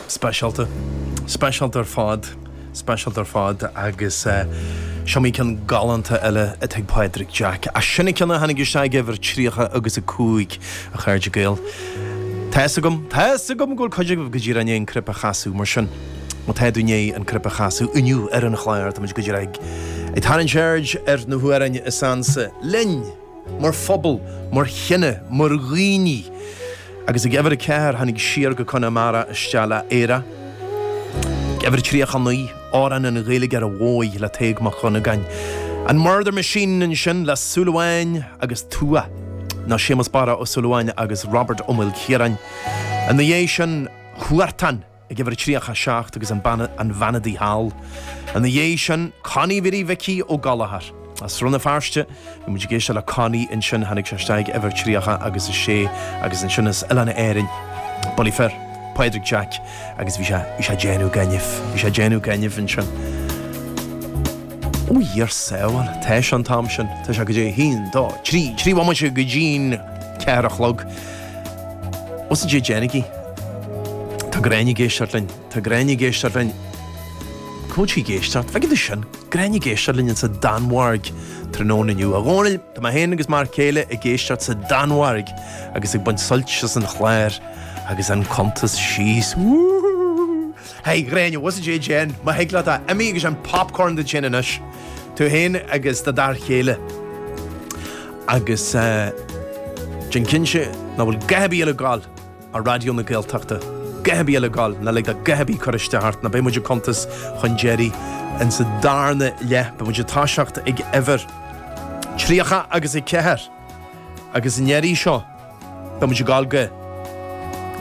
Speisialta. Speisialta ar fad. Speisialta ar fad. Agus is iomaí ceann galánta eile atá ag Pádraig Jack. Ach sin an ceann a tháinig isteach ag uimhir 30 agus 5, a chairde Gael. Tá fhios agam, tá fhios agam go bhfuil cuid agaibh go díreach i ndiaidh an cnaipe a chasadh, mar sin, má tá tú i ndiaidh an cnaipe a chasadh inniu ar an chlár, táimid go díreach ag tarraingt aird ar na hamhráin is ansa linn! mar phobal, mar chine, mar dhaoine. Agus ag uimhir 40 tháinig siar go Conamara isteach le Éire. Ag uimhir 39, Amhrán an Ghaeilgeora Mhóir le Tadhg Mac Dhonnagáin. An Murder Machine ansin le Súil Amháin agus Tuath. Nó Séamus Barra Ó Súilleabháin agus Robert Ó Maoilchiaráin. Ina dhiaidh sin, Huartan. ag uimhir 37 agus An Bhean Udaí Thall. Ina dhiaidh sin, Connie Mhary Mhicí Ó Gallchóir. As Rann na Feirste, bhí muid ag éisteacht le Connie ansin, tháinig sé isteach ag uimhir 30 agus 6 agus ansin as Oileáin Árann, bulaí fir, Pádraig Jack agus bhí sé, bhí sé ag déanamh gainimh, bhí sé ag déanamh gainimh ansin. Ó Dia ár sábháil, tá sé an t-am sin, tá sé cad é, a haon, dó, trí, trí bhomaite go dtí an ceathair a chlog. Bhfuil a fhios agaibh cad é déanaigí? Tá Gráinne ag éisteacht linn. Tá Gráinne ag éisteacht linn. Cá bhfuil sí ag éisteacht? Feiceann tú sin. Gráinne ag éisteacht linn insa Danmhairg tráthnóna inniu. A Dhónaill, tá mé féin agus m'fhear céile ag éisteacht sa Danmhairg agus ag baint suilt as an chlár agus an cuntas síos. Woohoo! Hey a Ghráinne, bhfuil a fhios agat cad é déan, má thig leat é, imigh agus déan popcorn duit féin anois, tú féin agus do d'fhear céile. Agus déan cinnte nach bhfuil a dhath ar bith eile ag gabháil ar Raidió na Gaeltachta, a dhath ar bith eile ag gabháil, ná lig do a dhath ar bith cur isteach ort nó beidh muid ag cuntas chun deiridh insa darna leath, beidh muid ag toiseacht ag uimhir 34 agus i ndeireadh seo. Beidh muid ag dul go.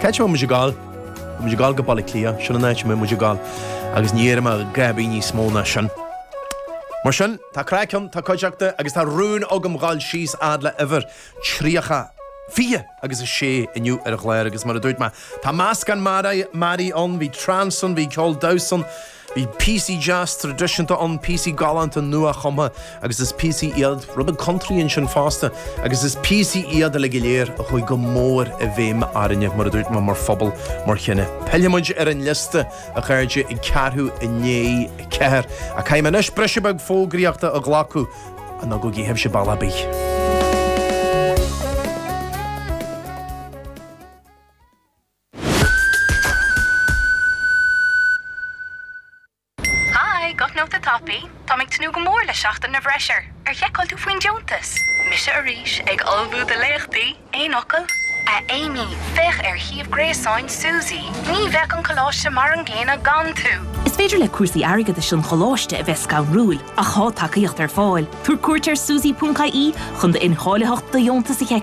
Cá háit a mbeidh muid ag dul? Tá muid ag dul go Baile Átha Cliath, sin an áit a mbeidh muid ag dul agus ní déarfaidh mé a dhath ar bith níos mó ná sin. Mar sin, tá craic ann, tá cuideachta agus tá rún agam dhul síos fhad le huimhir 30, 20 agus 6 inniu ar an chlár agus mar a dúirt mé, tá meascán mearaí ann, bhí trance ann, bhí ceol damhsa ann. Bhí píosaí deasa traidisiúnta ann, píosaí galánta nua-chumtha agus is píosaí iad rud beag country ansin fosta agus is píosaí iad uilig go léir a chuaigh go mór i bhfeidhm orainne, mar a dúirt mé, mar phobal, mar chine. Pillfidh muid ar an liosta, a chairde, ag ceathrú i ndiaidh a ceathair. Ach caithfidh mé anois briseadh beag fógraíochta a ghlacadh, ach ná gabhaigí sibhse bealach ar bith. Hi, guth nóta tapaidh! Táim ag tnúth go mór le Seachtain na bhFreisear, ar sheiceáil tú faoin deontas? Mise arís, ag ullmhú do léachtaí, aon fhocal? A Amy, féach ar shuíomh gréasáin SUSI, ní bheidh an coláiste mar an gcéanna gan tú! Is féidir le cúrsaí airgeadais an choláiste a bheith scanrúil, ach tá tacaíocht ar fáil. Tabhair cuairt ar susi.ie chun do incháilitheacht do dheontas a sheiceáil.